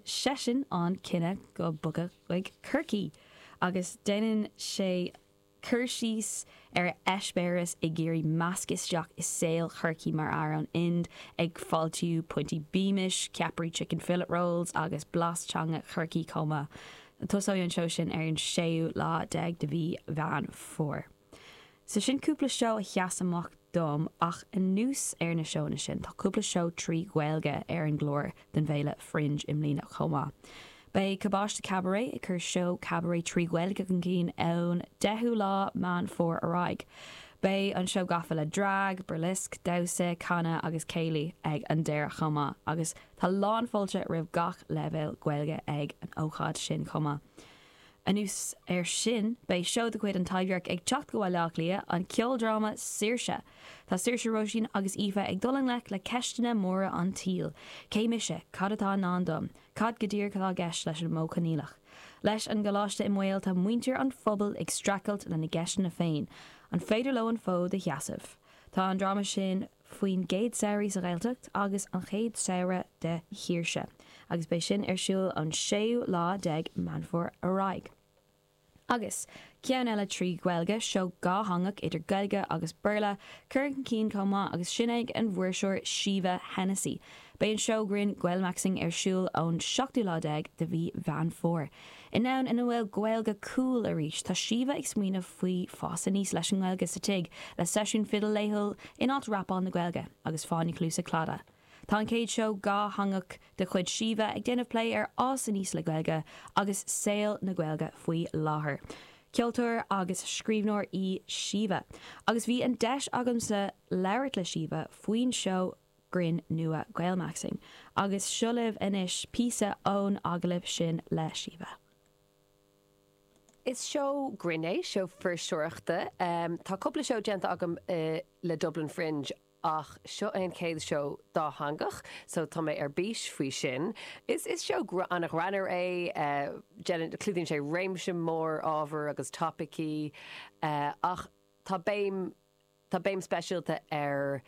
seisean an cinneadh bogadh chuig Corcaigh agus déanann sé cur síos ar a eispéireas ag iarraidh meascadh isteach i saol Chorcaí mar fhear ón Ind ag fáiltiú piontaí Beamish, ceapairí chicken fillet rolls agus blas teanga Chorcaí chomh maith. Tosóidh an seó sin ar an séú lá déag de mhí Mheán Fómhair. So sin cúpla seó a sheas amach dom ach anuas ar na seóanna sin tá cúpla seó trí Ghaeilge ar an gclár don bhFéile Fringe i mbliana chomh maith. Beidh Cabáiste Cabaret ag cur seó cabaret trí Ghaeilge chun cinn ón 10ú lá Meán Fómhair ar aghaidh. Beidh an seó gafa le drag, burlesque, damhsa, canadh agus céilí ag an deireadh chomh maith agus tá lán fáilte roimh gach leibhéal Gaeilge ag an ócáid sin chomh maith. Anuas air sin, beidh seó de chuid An Taibhdhearc ag teacht go Baile Átha Cliath, an ceoldráma Saoirse! Tá Saoirse Roisín agus Aoife ag dul i ngleic le ceisteanna móra an tsaoil, cé mise, cad atá i ndán dom, cad go díreach atá i gceist leis an Modh Coinníollach? Leis an gcoláiste i mbaol, tá muintir an phobail ag streachailt lena gceisteanna féin, an féidir leo an fód a sheasamh? Tá an dráma sin. faoin gcéad samhradh sa Ghaeltacht agus an chéad samhradh de shaoirse agus beidh sin ar siúl ón séú lá déag Meán Fómhair ar aghaidh. Agus ceann eile trí Ghaeilge, seó dhátheangach idir Gaeilge agus Béarla curtha chun cinn chomh maith agus sin ag an bhfuirseoir Síomha Hennessy. Beidh an seó grinn Gaelmaxxing ar siúl ón seachtú lá déag de mhí Mheán Fómhair. In am ina bhfuil Gaeilge 'cool' arís, tá Síomha ag smaoineamh faoi fás aníos leis an nGaeilge sa tigh, le seisiún fidil laethúil in áit rapáil na Gaeilge, agus fáinní cluasa Claddagh. Tá an chéad seó dhátheangach de chuid Síomha ag déanamh plé ar fhás aníos le Gaeilge agus saol na Gaeilge faoi láthair. Ceoltóir agus scríbhneoir í Síomha, agus bhí an deis agamsa labhairt le Síomha faoin seó grinn nua Gaelmaxxing, agus seo libh anois píosa ón agallamh sin le Síomha. Is seó grinn é, seó fuirseoireachta. Tá cúpla seó déanta agam le Dublin Fringe ach seo é an chéad seó dátheangach so tá mé ar bís faoi sin. Is seó ana ghreannmhar é, déanann, clúdaíonn sé réimse mór ábhar agus topaicí ach tá béim, Tá béim speisialta ar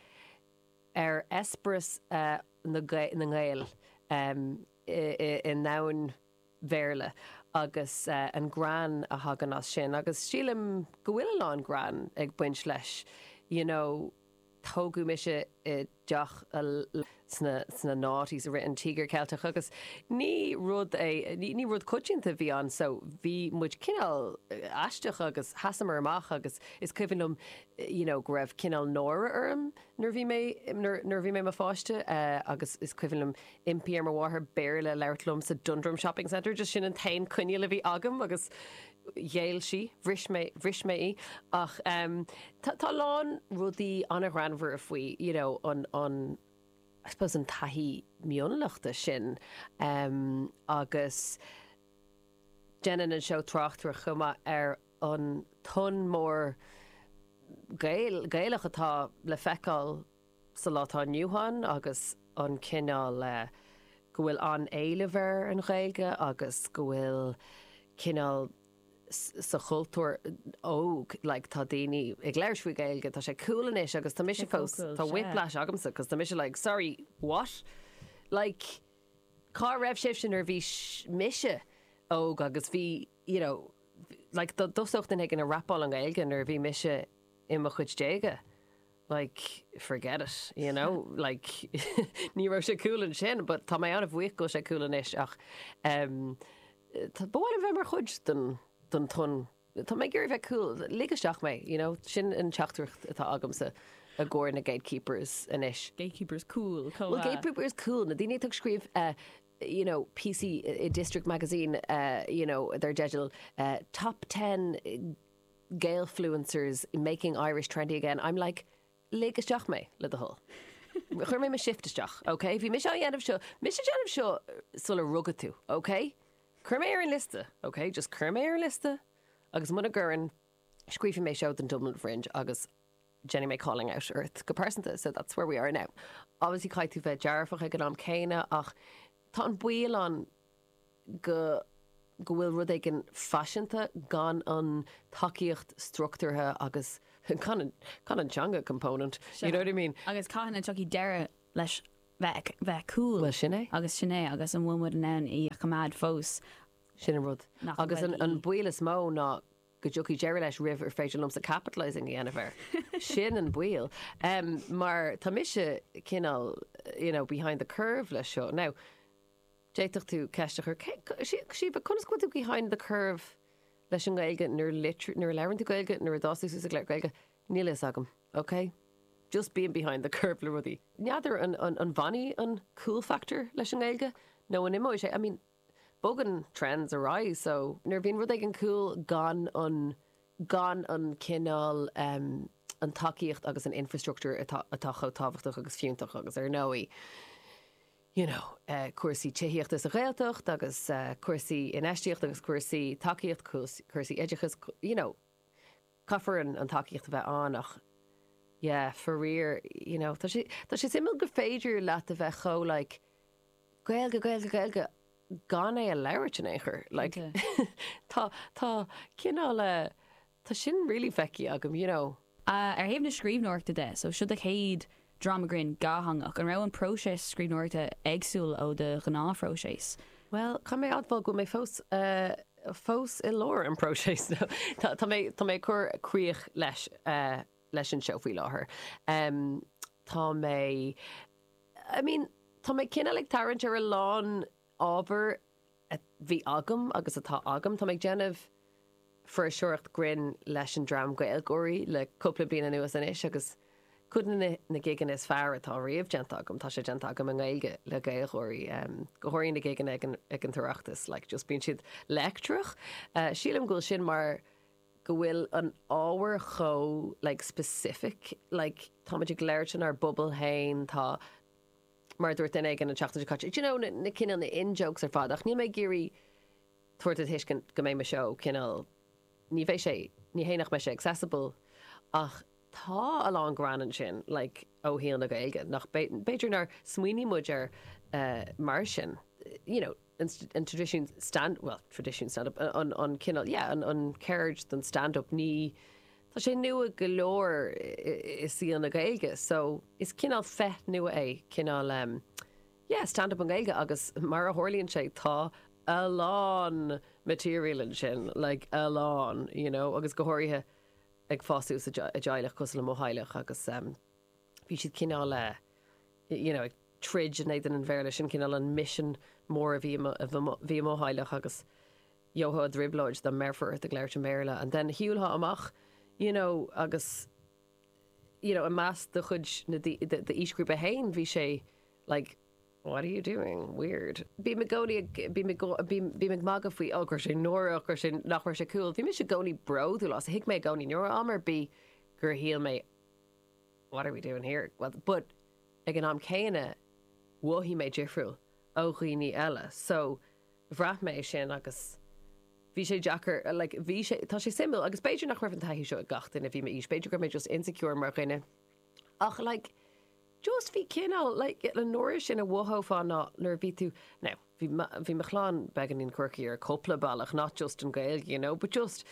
ar eispéireas na nGael i ndomhan an Bhéarla agus an greann a thagann as sin agus sílim go bhfuil a lán greann ag baint leis you know tógadh mise i deach sna noughties i rith an Tíogair Ceilteach agus ní rud é, ní rud coitianta a bhí ann so bhí muid cineál aisteach agus sheasamar amach agus is cuimhin liom you know go raibh cineál náire orm nuair a bhí mé, nuair a bhí mé i mo pháiste agus is cuimhin liom impí ar mo mháthair Béarla a labhairt liom sa Dundrum Shopping Centre just sin an t-aon coinníoll a bhí agam agus. ghéill sí, bhris mé, bhris mé í ach em tá, tá a lán rudaí an-ghreannmhara faoi you know an, an I suppose an taithí mionlachta sin em agus déanann an seó tráchtaireacht chomh maith ar an tonn mór Gael, Gaelach atá le feiceáil Sa lá atá inniu ann, agus an cineál go bhfuil an-éileamh ar an Ghaeilge agus go bhfuil cineál sa chultúr óg, like tá daoine ag labhairt faoi Gaeilge, tá sé cool anois agus tá mise fós, tá whiplash agamsa cos tá mise like sorry, what? Like cá raibh sibhse nuair a bhí mise óg agus bhí you know like do thosódh duine éigin a rapáil i nGaeilge nuair a bhí mise i mo chuid déaga like, forget it, you know, like, ní raibh sé cool ansin, but tá mé an-bhuíoch go bhfuil sé cool anois, ach em tá, ba mhaith liom bheith mar chuid den, den tonn, tá mé ag iarraidh bheith cool, lig isteach mé, you know, sin an teachtaireacht atá agamsa i gcomhair na gatekeepers anois. Gatekeepers cool chomh maith. Bhuel, gatekeepers cool, na daoine atá ag scríobh eh you know, píosaí i District Magazine eh you know, dar teideal eh Top Ten eh, Gaelfluencers making Irish trendy again, I'm like, lig isteach mé, le do thoil. Chuir mé mo shift isteach, ok? Bhí mise á dhéanamh seo, mise ag déanamh seo sular rugadh tú, ok? Cuir mé ar an liosta, ok? Just cuir mé ar an liosta, agus mura gcuireann, scríobfaidh mé seó don Dublin Fringe agus déanfaidh mé calling out ort go pearsanta, so that's where we are now. Obviously, caithfidh tú bheith dearfach ag an am céanna, ach tá an baol ann, go go bhfuil rud éigin faiseanta gan an tacaíocht struchtúrtha agus gan an teanga component, you know what I mean? Agus cathain a dtiocfaidh deireadh leis bheith cool? Bhuel, sin é. Agus sin é, agus an bhfuil muid in ann í a choimeád fós? Sin an rud. Agus an baol is mó ná go dtiocfaidh deireadh leis roimh ar féidir liomsa capitalising a dhéanamh air. Sin an baol. Mar tá mise cineál, you know, behind the curve leis seo. Now, D'fhéadfadh tú ceist a chur, síobadh, conas go bhfuil tú behind the curve leis an nGaeilge nuair a labhrann tú Gaeilge, nuair a d'fhás tú suas ag labhairt Gaeilge? Níl fhios agam, ok? Just bím behind the curve le rudaí. N'fheadar an bhfanfaidh an cool factor leis an nGaeilge nó an imeoidh sé? I mean, bogann trends ar aghaidh so nuair a bhíonn rud éigin cool gan an, gan an cineál em an tacaíocht agus an infrastructure atá chomh tábhachtach agus fiúntach agus ar ndóigh, you know cúrsaí tithíochta sa Ghaeltacht agus cúrsaí infheistíochta agus cúrsaí tacaíocht cúrsaí oideachais you know caithfear an tacaíocht a bheith ann ach yeah faraor you know tá sé tá sé suimiúil gur féidir leat a bheith chomh like Gaeilge Gaeilge Gaeilge gan é a labhairt in aon chor like tá tá cineál Tá sin really fecky agam, you know. Ar thaobh na scríbhneoireachta de, so seo do chéad dráma grinn dhátheangach, an raibh an próiseas scríbhneoireachta éagsúil ó do ghnáthphróiseas? Bhuel, caithfidh mé a admháil go bhfuil mé fós eh fós i lár an próiseas tá tá mé tá mé ag cur críoch leis eh leis an seó faoi láthair em tá mé I mean tá mé cineál ag tarraingt ar a lán Ábhar a bhí agam agus atá agam, tá mé ag déanamh fuirseoireacht grinn leis an dream GaelGáirí le cúpla bliain anuas anois agus cuid de na gigeanna is fearr atá riamh déanta agam, tá sé déanta agam i nGaeilge le Gaeilgeoirí, go háirithe na gigeanna ag an tOireachtas, like just bíonn siad leictreach. Sílim go bhfuil sin mar go bhfuil an ábhar chomh like specific, like táimid ag labhairt lenár bpobal féin, tá. Mar a dúirt duine éigin an tseachtain seo caite, do you know, na cineál, na in-jokes ar fad, ach níl mé ag iarraidh tabhairt a thuiscint go mbeidh mo seó cineál, ní bheidh sé, ní hé nach mbeidh sé accessible, ach tá a lán greann ansin, like, ó shaol na Gaeilge, nach b'fhéidir nár smaoinigh muid air mar sin, you know. an tradition stand, bhuel, tradition stand up, an cineál, yeah, an cheird den stand up, ní, tá sé nua go leor i saol na Gaeilge, so is cineál féith nua é, cineál, yeah, stand up i nGaeilge agus mar a tharlaíonn sé, tá a lán material ansin, like, a lán, you know, agus go háirithe ag fás suas i dteaghlach cosúil le mo theaghlach agus. bhí siad cineál you know ag troid in éadan an Bhéarla sin, cineál an mission mór a bhí ag mo theaghlach agus gheofá i dtrioblóid dá mbéarfaí ort ag labhairt an Bhéarla and then shiúlfá amach you know agus you know i measc do chuid na d'aoisghrúpa féin bhí sé like what are you doing? weird. Bím i gcónaí ag bím i bím ag magadh faoi oh go raibh sé náireach go raibh sé nach raibh sé cool. Bhí mise i gcónaí bródúil as thuig mé i gcónaí. Ní raibh am ar bith gur shíl mé What are we doing here? Well, but ag an am céanna mhothaigh mé difriúil ó dhaoine eile, so bhraith mé sin agus bhí sé deacair, like, bhí sé, tá sé suimiúil agus b'fhéidir nach raibh an taithí seo ag gach duine a bhí m'aois, b'fhéidir go raibh mé just insecure mar dhuine, ach, like, just bhí cineál, like, an uair sin a mhothófá ná nuair a bhí tú, now, bhí mo, bhí mo chlann beagáinín quirky ar cúpla bealach, not just an Gaeilge, you know, but just,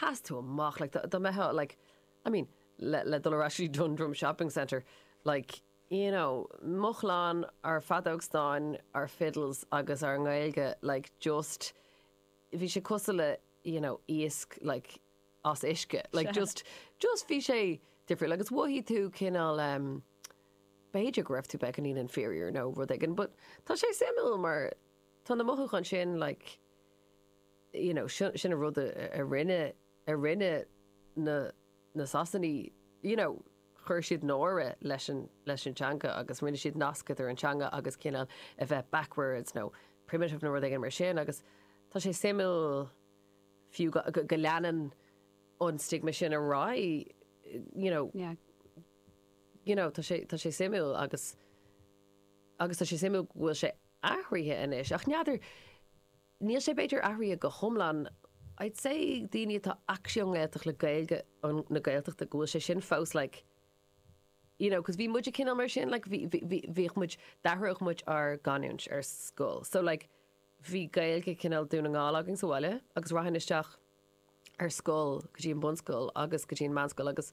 sheas tú amach, like, dá, dá mbeadh, like, I mean, le, le dul ar ais go Dundrum Shopping Centre, like, you know, mo chlann, ár feadóg stáin, ár fiddles agus ár nGaeilge, like, just, bhí sé cosúil le, you know, iasc, like, as uisce, like, just, just bhí sé difriúil, agus mhothaigh tú cineál, em, b'fhéidir go raibh tú beagáinín inferior nó rud éigin, but tá sé suimiúil mar tá na mothúcháin sin, like, you know, sin, sin an rud a, a rinne a rinne na na Sasanaigh, you know, chuir siad náire leis an leis an teanga agus rinne siad nasc idir an teanga agus cineál a bheith backwards nó primitive nó rud éigin mar sin agus tá sé suimiúil fiú go go go leanann an stigma sin ar aghaidh, you know, Yeah. you know, tá sé tá sé suimiúil agus agus tá sé suimiúil go bhfuil sé athraithe anois ach n'fheadar níl sé b'fhéidir athraithe go hiomlán, I'd say daoine atá actually ón nGaeltacht le Gaeilge na Gaeltachta go bhfuil sé sin fós like you know cos bhí muide cineál mar sin like bhí bhí bhíodh muid d'athródh muid ár gcanúint ar scoil so like bhí Gaeilge cineál Dún na nGall againn sa bhaile agus rachainn isteach ar scoil go dtí an bunscoil agus go dtí an meánscoil agus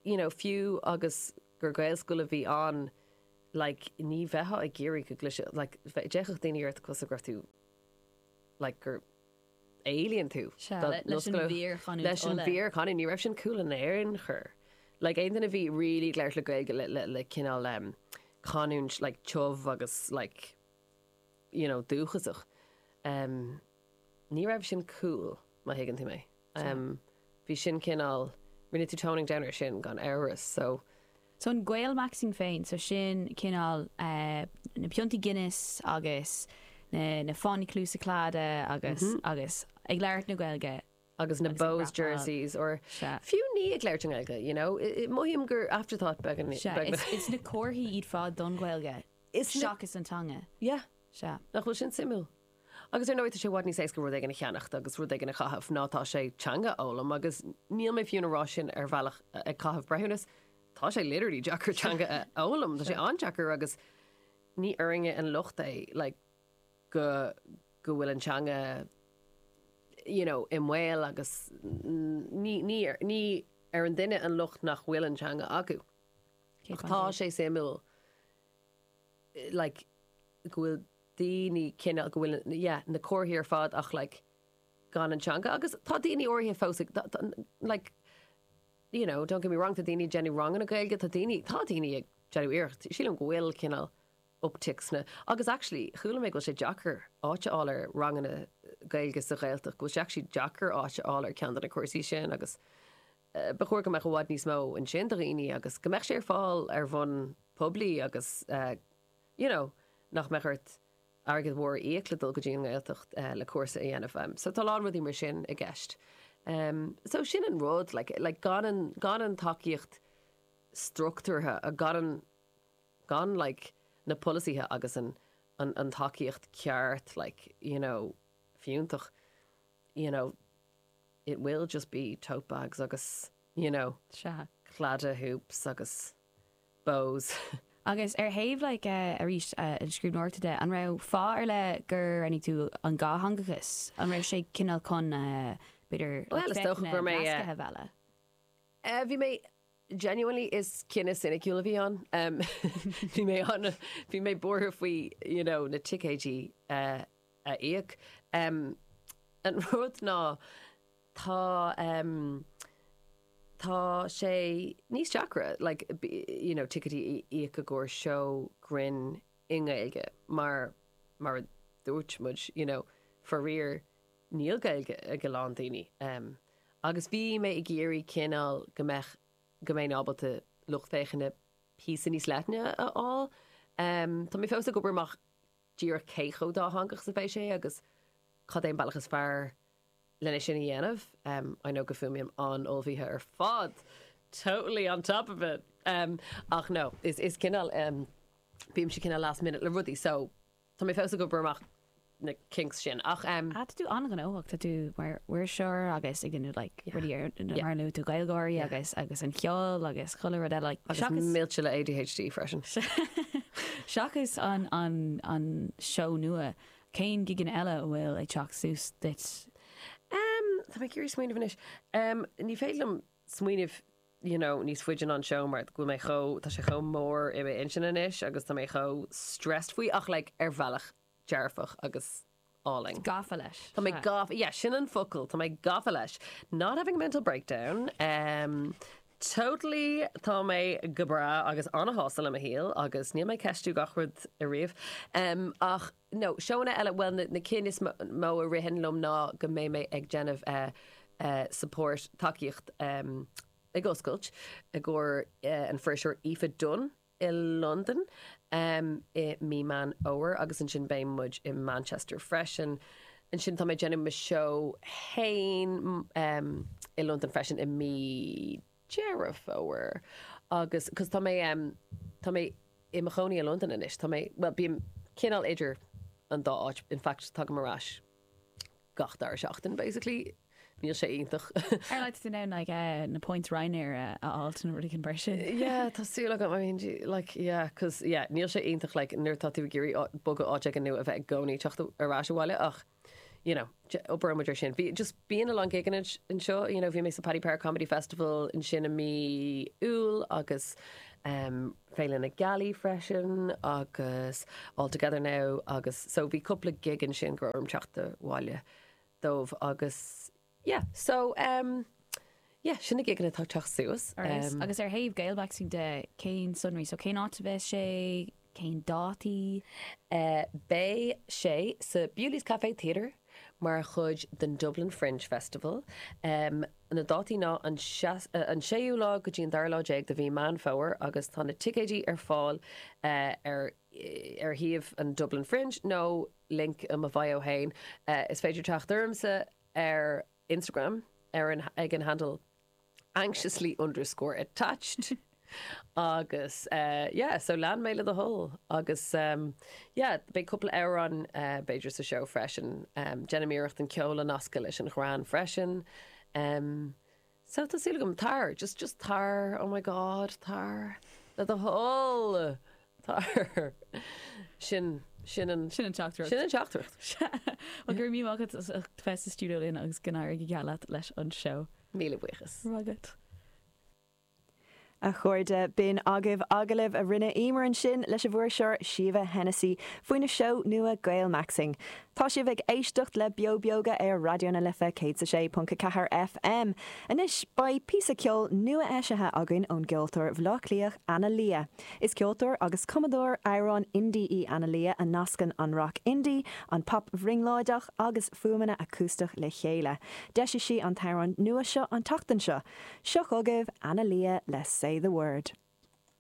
you know, fiú agus gur Gaelscoil a bhí ann, like, ní bheifeá ag iarraidh go gcloisfeadh, like, d'fhéachfadh daoine ort cosúil go raibh tú, like, gur alien thú Sea, do leis an Gaelscoil. bhfíorchanúint Leis an Uladh. bhfíorchanúint, ní raibh sin cool in aon chor. Like, aon duine a bhí really ag labhairt le Gaeilge, le, le, le cineál, um, canúint, like, tiubh agus, like, you know, dúchasach, um. ní raibh sin cool, má thuigeann tú mé. Bhí sin cineál, rinne tú toning down ar sin gan amhras, so. So an Gaelmaxxing féin, so sin cineál na piontaí Guinness agus na fáinní cluasa Claddagh agus, agus ag labhairt na Gaeilge. Agus na Bohs jerseys or fiú ní ag labhairt i nGaeilge, you know, mothaím gur afterthought beagán. Sea, is na comharthaí iad ar fad don Ghaeilge seachas an teanga. Yeah, nach bhfuil sin suimiúil? Agus ar ndóigh, tá sé i bhfad níos éasca rud éigin a cheannacht agus rud éigin a chaitheamh ná tá sé teanga a fhoghlaim agus níl mé fiú ina rá sin ar bhealach ag caitheamh breithiúnas, tá sé literally deacair teanga a fhoghlaim, tá sé an-deacair agus ní orainne an locht é like go go bhfuil an teanga you know i mbaol agus ní ní ní ar an duine an locht nach bhfuil an teanga acu. Ach tá sé suimiúil like go bhfuil daoine cineál go bhfuil yeah na comharthaí ar fad ach like gan an teanga agus tá daoine áirithe fós ag like you know don't get me wrong tá daoine ag déanamh ranganna Gaeilge tá daoine tá daoine ag déanamh iarracht sílim go bhfuil cineál uptick sna agus actually chuala mé go bhfuil sé deacair áit a fháil ar ranganna Gaeilge sa Ghaeltacht go bhfuil sé actually deacair áit a fháil ar ceann de na cúrsaí sin agus Ba chóir go mbeadh i bhfad níos mó ansin do dhaoine agus go mbeadh sé ar fáil ar bhonn poiblí agus you know nach mbeadh ort airgead mhór a íoc le dul go dtí an nGaeltacht le cúrsa a dhéanamh. So tá a lán rudaí mar sin i gceist. So sin an rud, like like gan an gan an tacaíocht structúrtha a gan an gan like na polasaithe agus an an an tacaíocht ceart like you know fiúntach you know. it will just be tote bags agus you know Sea. claddagh hoops agus bows. Agus ar thaobh like arís an scríbhneoireachta de, an raibh fáth ar leith gur roghnaigh tú an dhátheangachas? An raibh sé cineál chun b'fhéidir Bhuel, is dócha gur mé, eh, nasctha bheith le. Eh bhí mé Genuinely is cinneadh ciniciúil a bhí ann. Bhí mé an, bhí mé buartha faoi you know na ticéidí a íoc. An rud ná tá tá sé níos deacra like you know ticéidí a íoc i gcomhair seó grinn i nGaeilge mar mar a dúirt muid you know faraor Níl Gaeilge ag a lán daoine agus bhí mé ag iarraidh cineál go mbeadh, go mbeinn ábalta lucht féachana píosa níos leithne a fháil. Tá mé fós ag obair amach díreach cé chomh dátheangach is a bheidh sé agus cad é an bealach is fearr len é sin a dhéanamh. I know go bhfuaimím an-ullmhaithe ar fad, totally on top of it! Ach no, is cineál, bímse cineál last minute le rudaí so. Tá mé fós ag obair amach na kinks sin ach em. Ah tá tú an-ghnóthach, tá tú mar iriseoir agus ag déanamh like rudaí ar na mar a luaigh tú Gaeilgeoirí agus agus an cheol agus chuile rud eile like seachas. Agus millte le ADHD freisin. Seachas an an an seó nua, cén gigeanna eile a bhfuil ag teacht suas duit? Em tá mé ag iarraidh smaoineamh anois. Em ní féidir liom smaoineamh you know níos faide ná an seomra, mar go bhfuil mé chomh, tá sé chomh mór i m'intinn anois agus tá mé chomh stressed faoi ach like ar bhealach dearfach agus álainn. gafa leis. Tá mé gafa, yeah, sin an focal, tá mé gafa leis. Not having a mental breakdown, em totally tá mé go breá agus ana-shásta le mo shaol agus níl mé ag ceistiú gach rud ariamh em ach, nó seóanna eile, bhuel na cinn is mó a ritheann liom ná go mbeidh mé ag déanamh support, tacaíocht, ag oscailt i gcomhair an fuirseoir Aoife Dunne i Londain i mí Meán Fómhair agus ansin beidh muid i Manchester freisin. Ansin tá mé ag déanamh mo seó féin i Londain freisin i mí. Deireadh Fómhair agus cos tá mé tá mé i mo chónaí i Londain anois. Tá mé, bhuel bím cineál idir an dá áit, in fact tagaim ar ais gach dara seachtain basically. Níl sé iontach. An bhfuil tú in ann like na points Ryanair a fháilt nó rud éigin mar sin? Yeah tá súil agam, I mean gee like yeah cos yeah níl sé iontach like nuair atá tú ag iarraidh bogadh áit éigin nó a bheith i gcónaí ag teacht ar ais abhaile ach you know, oibreoimid ar sin. Bhí, just bíonn a lán gigeanna anseo, you know, bhí mé sa Paddy Power Comedy Festival ansin i mí Iúil agus em Féile na Gealaí freisin agus All Together Now agus so bhí cúpla gig ansin go raibh orm teacht abhaile dóibh agus Yeah so em yeah sin na gigeanna atá ag teacht suas. Arís, agus ar thaobh Gaelmaxxing de, cén sonraí? So cén áit a bheas sé? Cén dátaí? Eh beidh sé sa Bewley's Café Theatre mar chuid den Dublin Fringe Festival. Em na dátaí ná an seas- eh an séú lá go dtí an dara lá déag de mhí Meán Fómhair agus tá na ticéidí ar fáil eh ar eh ar shuíomh an Dublin Fringe nó link i mo bhio féin. Is féidir teacht ormsa ar Instagram ar an ag an handle anxiously underscore attached agus yeah so lean mé le do thoil agus yeah beidh cúpla amhrán b'fhéidir sa seó freisin. Déanaim iarracht an ceol a nascadh leis an ghreann freisin. Sea, tá súil agam, tar, just, just tar, oh my god, tar, le do thoil, tar, sin, sin an, Sin an teachtaireacht. sin an teachtaireacht. Sea, well go raibh míle maith agat as ucht bheith sa stiúideo linn agus go n-éirí go geal leat leis an seó. Míle buíochas. Rath agat. A chairde, b'in agaibh agallamh a rinne Emer ansin leis a bhfuirseoir Síomha Hennessy faoina seó nua Gaelmaxxing. Tá sibh ag éisteacht le Beo Beoga ar Raidió na Life 106.4 FM. Anois, beidh píosa ceoil nua-eisithe againn ón gceoltóir Bhleá Cliathach, Anna Leah. Is ceoltóir agus cumadóir amhrán indie í Anna Leah a nascann an rac indie, an pop brionglóideach, agus fuaimeanna acústach le chéile. D'eisigh sí an t-amhrán nua seo an tseachtain seo. Seo chugaibh Ana Lia le Say The Word.